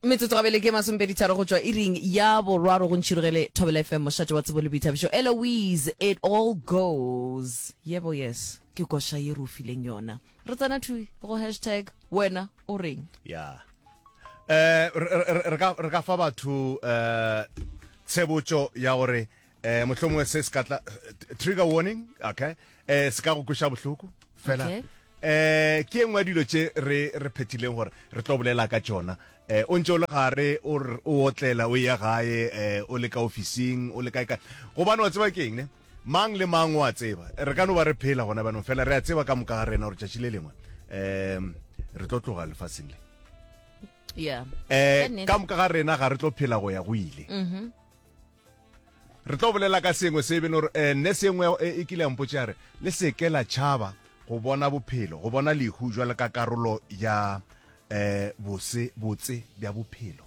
metsotso gabele ke masompedi tharo go tšwa iring ya borwaro go ntšhirogele thobela fm mošate wa tsebo le boithabišo eloise it all goes yebo yes ke koša ye re o fileng yona re tsena thui go hashtag wena o reng ya um re ka fa batho um tshebotso ya gore eh mohlomongwe se se ka tla trigger warning okay eh se ka go kweša bohloko fela Okay. eh ke engwe ya dilo tše re re phethileng gore re tlo bolela ka tšona eh o ntse o le gare o r- o otlela o ya gae eh o le ka ofising o le kae kae gobane wa tseba ke eng ne mang le mang wa tseba re ka no ba re phela gona banong fela re a tseba ka moka ga rena gore tšatši le lengwe um re tlo tloga lefaseng le yeah Ka eh nnete. ka moka ga rena ga re tlo phela go ya go ile Re tlo bolela ka sengwe se beno re eh, nne sengwe eh, e kile ya mpotša re le seke la tšhaba go bona bophelo go bona lehu jwale ka karolo ya eh bose botse bja bophelo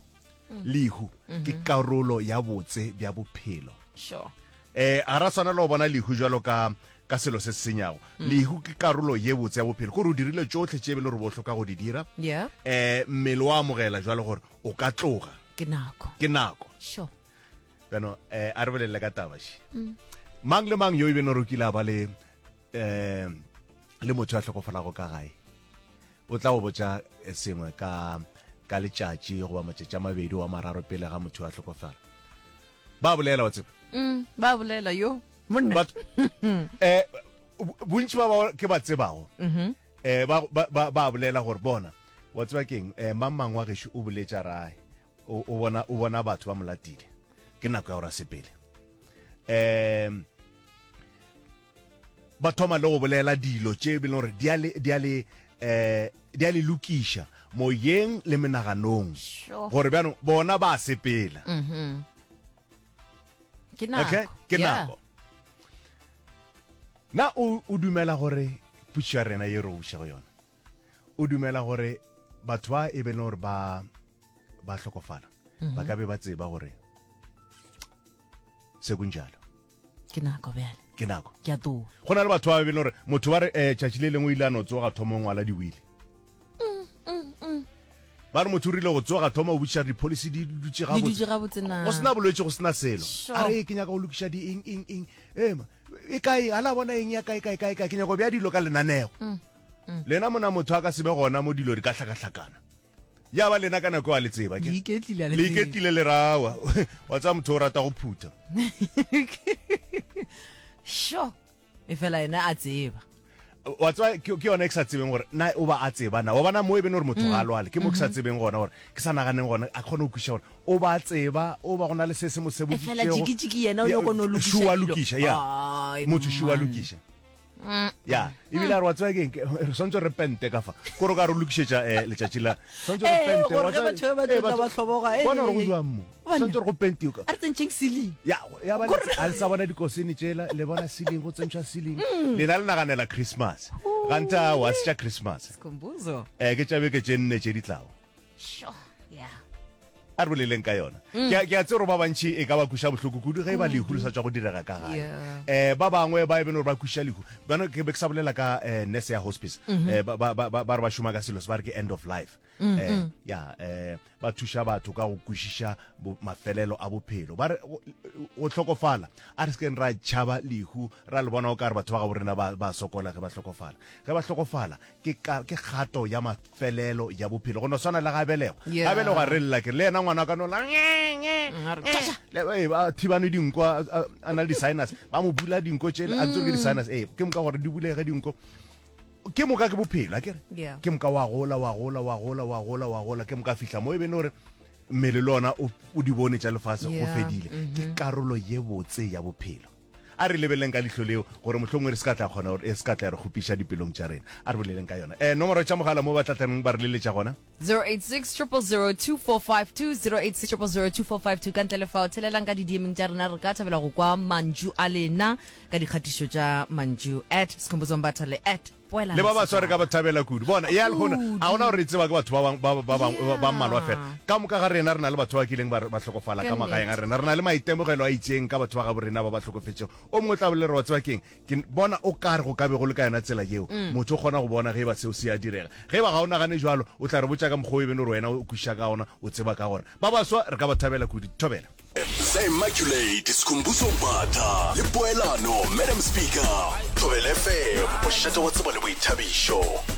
mm. lehu ke mm-hmm. karolo ya botse bja bophelo sure eh a ra tshwanela go bona lehu jwalo ka ka selo se senyago mm. lehu ke karolo ye botse ya bophelo gore o dirile tsotlhe tše e be le gore bo hloka go di dira yeah. eh mmele wa amogela jwalo gore o ka tloga ke nako ke nako sure bjano eh a re bolelele ka taba she mm. mang le mang yo e beno rokile a ba le eh le motho ya tlhokofalago ka gae o tla go botsa eh, sengwe ka ka letšatši goba matšatši a mabedi wa mararo pele ga motho a tlhokofala ba bolela wa tseba mm, ba bolela yo monna eh bontši ba ba ke ba tsebago mm-hmm. Eh, ba, ba, ba, ba bolela gore bona wa tseba keng eh, mang mang wa gešo o boletša rae o o bona o bona batho ba molatile ke nako ya go rasepele um ba thoma le go bolela dilo tše e bile gore di a le di a le eh di a le lokiša moyeng le menaganong Sure. gore bjanong bona ba sepela okay ke nako na o o dumela gore pušo ya rena ye re obuša go yona o dumela gore batho ba e be le gore ba ba hlokofala mhm. ba ka be ba tseba gore se kunjalo ke nako bjale ke nako ke a too go na le batho ba be le gore motho ba re um tšatši le lengwe o ile a no tsoga thomong wa la diwile ba re motho o rile go tsoga thoma o botšiša gore dipolicy di dutše Di dutše gabotse na? go sena bolwetse go sena selo Sure. a re "Ee, ke nyaka go lokiša di eng eng eng ema e kae a la bona eng ya kae kae kae kae ke nyaka go bea dilo ka lenanego lena mona motho a ka sebe gona mo dilo di ka hlakahlakana ya ba lena ka nako eo a le tseba ke Le iketlile, a le le tsebe. iketlile le rawa wa tsaya motho o rata go phutha sure e fela ene a tseba wa tswa ke yone ke sa tsebeng gore na o ba a tseba na wa bona mo e bene gore motho ga a mm. lwale ke mo ke sa mm-hmm. tsebeng gona gore ke sa naganeng gona a kgone go kwiša gore o ba a tseba o ba go na le se se mo seboditšegoshua lokiša ya motho shua lokiša mm. ya ebile a re wa tswa keng re swantse re pente ka fa kore ka re lokišetša um eh, letšatši la swantse re eh, pentebatho ba tlotla ba tlhoboga eh, bona gore go jwang mo swanetse go pentio ka re tsentšheng ceiling ya ya ba a sa bona dikosene tšela le bona ceiling go tsentšha ceiling mm. le na le naganela christmas ganta wa se tša christmas sikhumbuzo eh ke tšabe ke tšenne tše ditlago sure yeah a re boleleng ka yona mm. ke a tsero ba bantšhi e ka ba kuša bohloko kudu ge e ba mm. lehu le sa tswa go direga ka gae um eh, ba bangwe ba e bene gore ba kuša lehu bana ke be ke sa bolela ka um nurse ya hospice um ba re ba šoma ka selo se ba re ke end of life Mm, eh, mm. ya eh ba thuša batho ka go kwešiša bo- mafelelo a bophelo ba re go- go hlokofala a re sekeng ra tšhaba lehu ra le bona o ka re batho ba ga borena ba ba sokola ge ba hlokofala ge ba hlokofala ke ka- ke kgato ya mafelelo ya bophelo go no swana le ga belego Yeah. ga belego a re lela ke le yena ngwana a ka nola Mm, a re, "Tšaša!" Eh, ba thibane dinko a- a a na le di-sinus ba mo bula dinko tšele a ntse o re ke di-sinus ee ke moka gore di bulege dinko Ke moka ke bophelo, a ke re? Yeah. Ke moka wa gola, wa gola, wa gola, wa gola, wa gola, ke moka fihla mo e be ne gore mmele le ona o o di bone tša lefase go Yeah, fedile. Ke karolo ye botse ya bophelo. A re lebeleleng ka lihlo leo gore mohlomongwe re se ka tla kgona gore e se ka tla ya re kgopiša dipelong tša rena. A re boleleng ka yona. Eh, nomoro tša mogala mo ba tla tlaneng ba re leletša gona. 086002452086002452 ka ntle le fao thelelang ka didiemeng tša rena re ka thabela go kwa mantšu a lena ka dikgatišo tša mantšu at sekhombotsong batha le at poela le ba baswa re ka ba thabela kudu bona ya lekgona a gona gore e tseba ke batho ba bang- ba- ba- ba bang- ba- ba mmalwa fela ka moka ga rena re na le batho ba ba kileng ba re- ba hlokofala ka Ke magaeng a nnete. rena re na le maitemogelo a itseng ka batho ba gabo rena ba ba hlokofetšego o mongwe o tla bolelera wa tseba keng Ke bona o ka re go ka be go le ka yona tsela yeo motho o kgona go bona ge e ba seo se a direga. Ge e ba ga o nagane bjalo, o tla re botša ka mokgwa wo e beno gore wena o kwešiša ka gona, o tseba ka gona. Ba baswa re ka ba thabela kudu. Thobela. The Immaculate, Sikhumbuzo Mbatha le Poelano, Madam Speaker. Thobela FM, mošate wa tsebo le boithabišo.